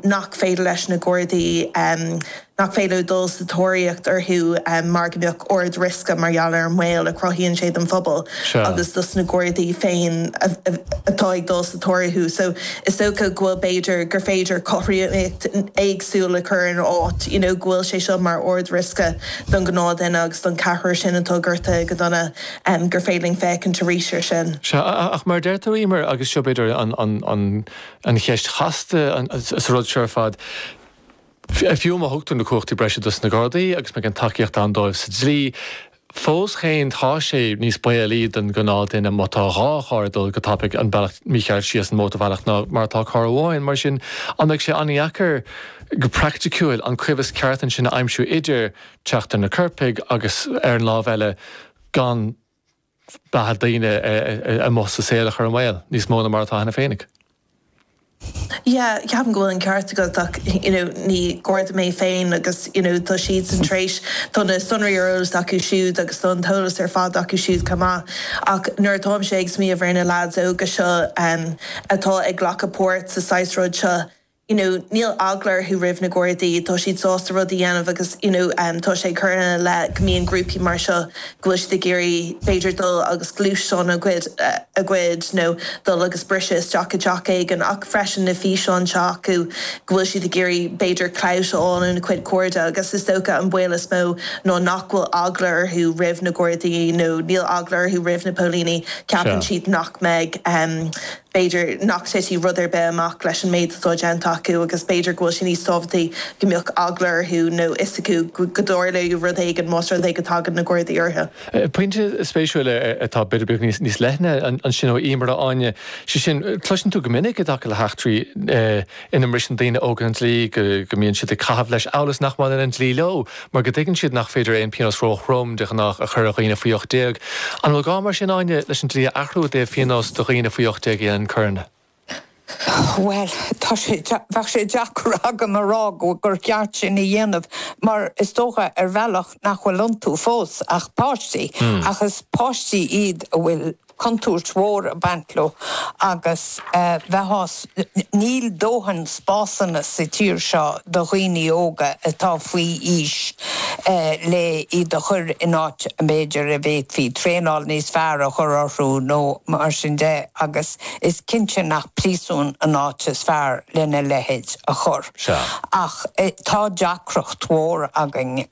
nach féidir leis na Gardaí nach féidir dul sa tóiríocht orthu mar go mbeadh ard riosca mar gheall ar an mbaol a chruthaíonn sé don phobal agus dos na Gardaí féin atá ag dul sa tóir orthu. So is dócha go bhfuil b'fhéidir gur féidir cothromaíocht éagsúil a chur ina áit you know go bhfuil sé seo mar ard riosca don ghnáthdhuine agus don cheathrar sin atá gortaithe go dona gur féidir linn féachaint arís ar sin. Sea, ach mar a deir tú, Emer, agus seo b'fhéidir an cheist chasta sa rud seo ar fad, fiú má thugtar na cumhachtaí breise dos na Gardaí agus má bhíonn tacaíocht ann dóibh sa dlí, fós féin tá sé níos baolaí don ghnáthdhuine má tá dhá charr ag dul go tapaidh an bealach mícheart síos an mótarbhealach ná mar atá carr amháin. Mar sin an mbeidh sé an-dheacair go praicticiúil an coimheas ceart ansin a aimsiú idir teacht ar na coirpigh agus ar an lámh eile gan beatha daoine amuigh sa saol a chur i mbaol níos mó ná mar atá cheana féinig. Yeah, ceapaim go bhfuil an ceart agat ach you know ní Garda mé féin agus you know tá siadsan tar éis, tá na sonraí ar eolas acu siúd agus tá an t-eolas ar fad acu siúd chomh maith ach nuair atáimse ag smaoineamh ar na leaids óga seo atá ag glacadh páirt sa saghas rud seo, you know níl eagla orthu roimh na Gardaí, tá siad sásta rud a dhéanamh agus you know tá sé curtha ina leith go mbíonn grúpaí mar seo go bhfuil siad ag iarraidh b'fhéidir dul agus gluaisteán a ghoid a ghoid nó dul agus briseadh isteach i dteach éigin ach freisin na físeáin atá acu go bhfuil siad ag iarraidh b'fhéidir clout a fháil óna cuid cairde agus is dócha an baol is mó ná nach bhfuil eagla orthu roimh na Gardaí nó níl eagla orthu roimh na póilíní ceapann siad nach mbeidh b'fhéidir nach dtitfidh rud ar bith amach leis an méid atá déanta acu agus b'fhéidir go bhfuil sé níos tábhachtaí go mbeadh eagla orthu nó fhios acu go dtarlóidh rud éigin más rud é go dtagann na Gardaí orthu. Pointe spéisiúil atá b'fhéidir beagán níos leithne ansin ó Emer Áine, sé sin, cloiseann tú go minic i dtaca le heachtraí, ina mbriseann daoine óga an dlí, go mbíonn siad ag caitheamh leis amhail is nach mbaineann an dlí leo, mar go dtuigeann siad nach féidir aon phíonós ró-throm, de ghnách, a chur ar dhaoine faoi 18. An bhfuil gá mar sin, Áine, leis an dlí a athrú i dtaobh phíonós do dhaoine faoi 18 a dhéanann coireanna? Bhuel, tá sé, bheadh sé deacair agam a rá gur cheart sin a dhéanamh mar is dócha, ar bhealach, nach bhfuil iontu fós ach páistí, ach is páistí iad a bhfuil contúirt mhór ag baint leo agus bheadh, níl dóthain spásanna sa tír seo do dhaoine óga atá faoi aois le iad a chur in áit b'fhéidir a bhféadfaí traenáil níos fearr a chur orthu nó mar sin de agus is cinnte nach príosún an áit is fearr lena leithéid a chur ach tá deacracht mhór againn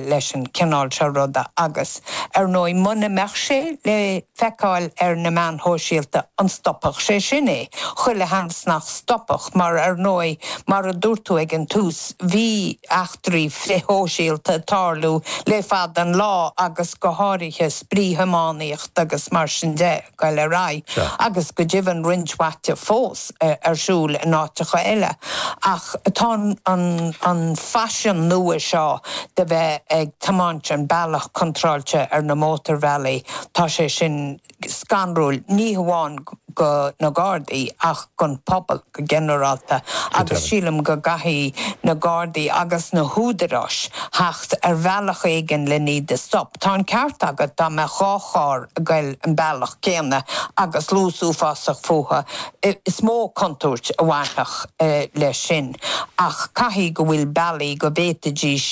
leis an cineál seo ruda agus. Ar ndóigh, muna mbeadh sé le feiceáil ar na meáin shóisialta, an stopfadh sé sin é? Chuile sheans nach stopfadh mar, ar ndóigh, mar a dúirt tú ag an tús, bhí eachtraí frithshóisialta ag tarlú le fada an lá agus go háirithe spraoithiománaíocht agus mar sin de. Ag goil ar aghaidh agus go deimhin roinnt mhaith de fós ar siúl in áiteacha eile ach tá an faisean nua seo de bheith ag tiomáint an bealach contráilte ar na mótarbhealaí, tá sé sin scanrúil ní hamháin go na Gardaí ach gon phobal. go ginearálta agus sílim go gcaithfidh na Gardaí agus na húdaráis theacht ar bhealach éigin len iad a stop. Tá an ceart agat, dá mbeadh dhá charr ag goil an bealach céanna agus luas uafásach fúthu, is mó contúirt a bhainfeadh leis sin ach caithfidh go bhfuil bealaí go bhféadfaidís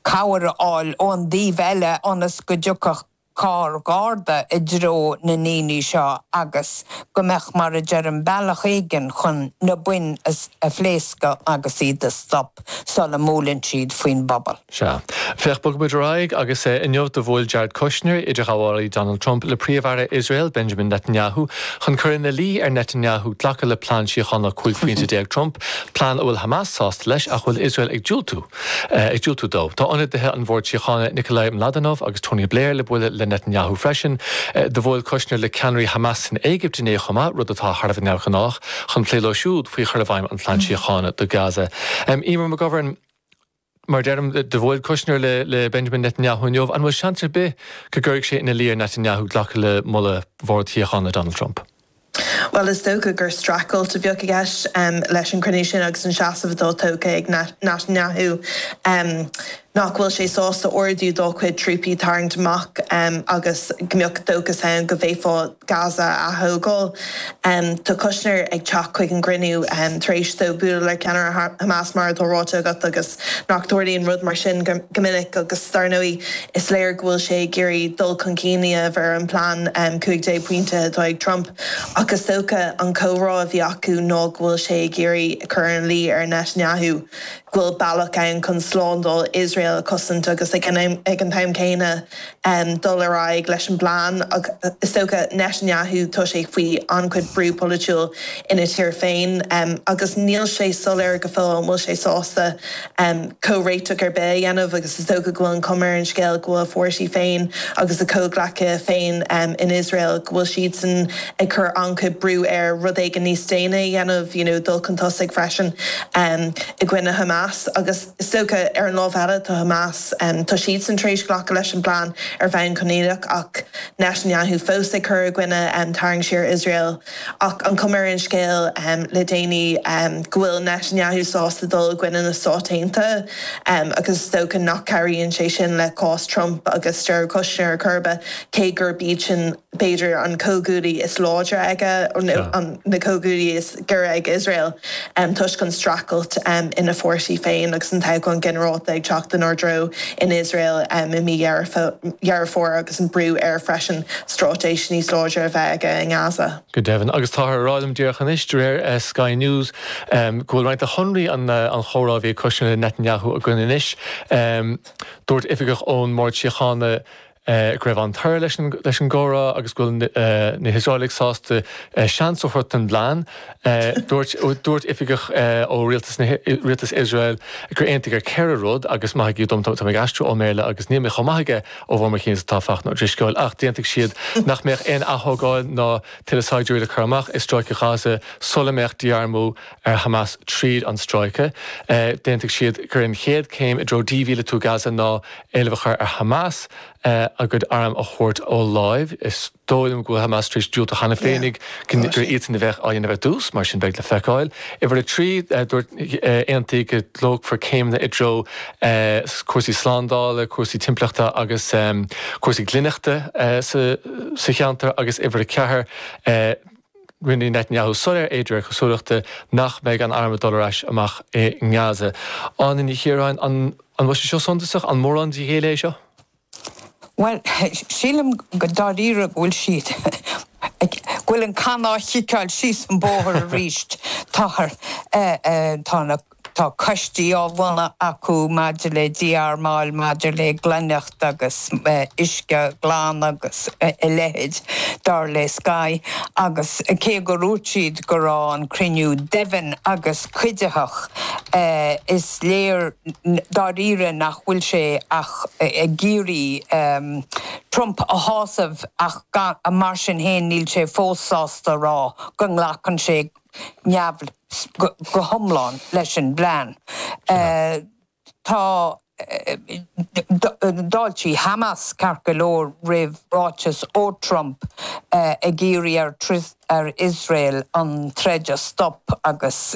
cabhair a fháil ón dtaobh eile ionas go dtiocfadh carr Garda i dtreo na ndaoine seo agus go mbeadh, mar a deirim, bealach éigin chun na boinn a phléascadh agus iad a stop sula mbuaileann siad faoin bpobal. Sea. Féach, bogfaidh muid ar aghaidh agus inniu do bhuail Jared Kushner, idirghabhálaí Donald Trump, le Príomh-Aire Iosrael, Benjamin Netanyahu, chun cur ina luí ar Netanyahu glacadh le plean síochána 15 phointe Trump, plean a bhfuil Hamas sásta leis ach a bhfuil Iosrael ag diúltú. ag diúltú dó. Tá ionadaithe an Bhord Síochána Nikolai Mladenov agus Tony Blair le bualadh le Netanyahu freisin. Do bhuail Kushner le ceannairí Hamas san Éigipt inné chomh maith, rud atá thar a bheith neamhghnách, chun plé leo siúd faoi chur i bhfeidhm an Phlean Síochána do Gaza. Eimear McGovern, Mar a deirim, do bhuail Kushner le Benjamin Netanyahu inniu. An bhfuil seans ar bith go gcuirfidh sé ina luí ar Netanyahu glacadh le moladh Bhord Síochána Donald Trump? Bhuel is dócha gur strachailt a bheadh i gceist leis an gcruinniú sin agus an seasamh atá tógtha ag Netanyahu nach bhfuil sé sásta ordú dá chuid trúpaí tarraingt amach agus go mbeadh dóchas ann go bhféadfá Gaza a aththógáil. Tá Kushner ag teacht chuig an gcruinniú tar éis dó bualadh le ceannaire Hamas mar atá ráite agat agus. Ní tharlaíonn rud mar sin go minic agus dar ndóigh is léir go bhfuil sé ag iarraidh dul chun cinn a dhéanamh ar an bplean 15 pointe atá ag Trump ach is dócha, an comhrá a bhí acu ná go bhfuil sé ag iarraidh a chur ina luí ar Netanyahu go bhfuil bealach ann chun slándáil Iosrael a chosaint agus ag an t-am céanna, um dul ar aghaidh leis an bplean ach is dócha Netanyahu tá sé faoi an-chuid brú polaitiúil ina thír féin um agus níl sé soiléir go fóill an bhfuil sé sásta um comhréiteach ar bith a dhéanamh agus is dócha go bhfuil an chuma ar an scéal go bhfuil a pháirtí féin agus a chomhghleacaithe féin um in Iosrael go bhfuil siadsan ag cur an-chuid brú air rud éigin níos déine a dhéanamh you know dul chun tosaigh freisin um i gcoinne Hamas agus Is dócha, ar an lámh eile, tá Hamas, tá siadsan tar éis glacadh leis an bplean ar bhonn coinníollach, ach Netanyahu fós ag cur i gcoinne tarraingt siar Iosrael. Ach an chuma ar an scéal le déanaí go bhfuil Netanyahu sásta dul i gcoinne na Stát Aontaithe, agus is dócha nach gcabhraíonn sé sin le cás Trump agus Jared Kushner ar chor ar bith, cé gurb iad sin b'fhéidir an comhghuaillí is láidre aige nó na comhghuaillithe is giorra ag Iosrael toisc an stracailt ina pháirtí féin agus an toghchán ginearálta ag teacht inár dtreo in Iosrael i mí Dheireadh Fómhair agus an brú air freisin stráitéis níos láidre a bheith aige i nGaza. Go deimhin, agus táthar a rá liom díreach anois, de réir Sky News, go bhfuil roinnt de shonraí an chomhrá a bhí ag Kushner le Netanyahu againn anois. Dúirt oifigeach ón mBord Síochána, go raibh an-toradh leis an gcomhrá agus go bhfuil na hIosraelaigh sásta seans a thabhairt don bplean. Dúirt oifigeach ó Rialtas Iosrael gur aontaíodh ar ceithre rud agus maithigí dom, táim ag aistriú ón mBéarla agus níl mé chomh maith aige ó bharr mo chinn is atá Fachtna Ó Drisceoil, ach d'aontaigh siad nach mbeadh aon aththógáil ná tuilleadh saighdiúirí le cur amach i Stráice Ghaza sula mbeadh dí-armú ar Hamas tríd an stráice. D'aontaigh siad gur an chéad chéim i dtreo dímhíleatú Gaza ná éileamh a chur ar Hamas a gcuid arm a thabhairt ar láimh. Is dóigh liom go bhfuil Hamas tar éis diúltú cheana féinig gur iadsan a bheadh á dhéanamh ar dtús, mar sin beidh le feiceáil. Uimhir a trí, dúirt aontaíodh go dtógfar céimeanna i dtreo cúrsaí slándála, cúrsaí timpeallachta agus cúrsaí glaineachta sa cheantar agus uimhir a ceathair, Rinne Netanyahu soiléir é, de réir cosúlachta, nach mbeadh an arm ag dul ar ais amach i nGaza. Áine Ní Chiaráin, An bhfuil sé seo suntasach? An mórán de ghéilleadh é seo? Bhuel, sílim go dáiríre go bhfuil siad, go bhfuil an can á chiceáil síos an bóthar arís. Táthar, tá na. Tá coistí á mbunú acu maidir le dí-armáil, maidir le glaineacht agus uisce glan agus a leithéid, dar le Sky, agus cé gur dhúirt siad go raibh an cruinniú domhain agus cuiditheach, is léir dáiríre nach bhfuil sé ach ag iarraidh Trump a shásamh ach mar sin féin níl sé fós sásta a rá go nglacann sé neamhspleách go hiomlán leis an bplean. Tá d'fháiltigh Hamas, ceart go leor, roimh ráiteas ó Trump ag iarraidh ar Iosrael an troid a stop agus.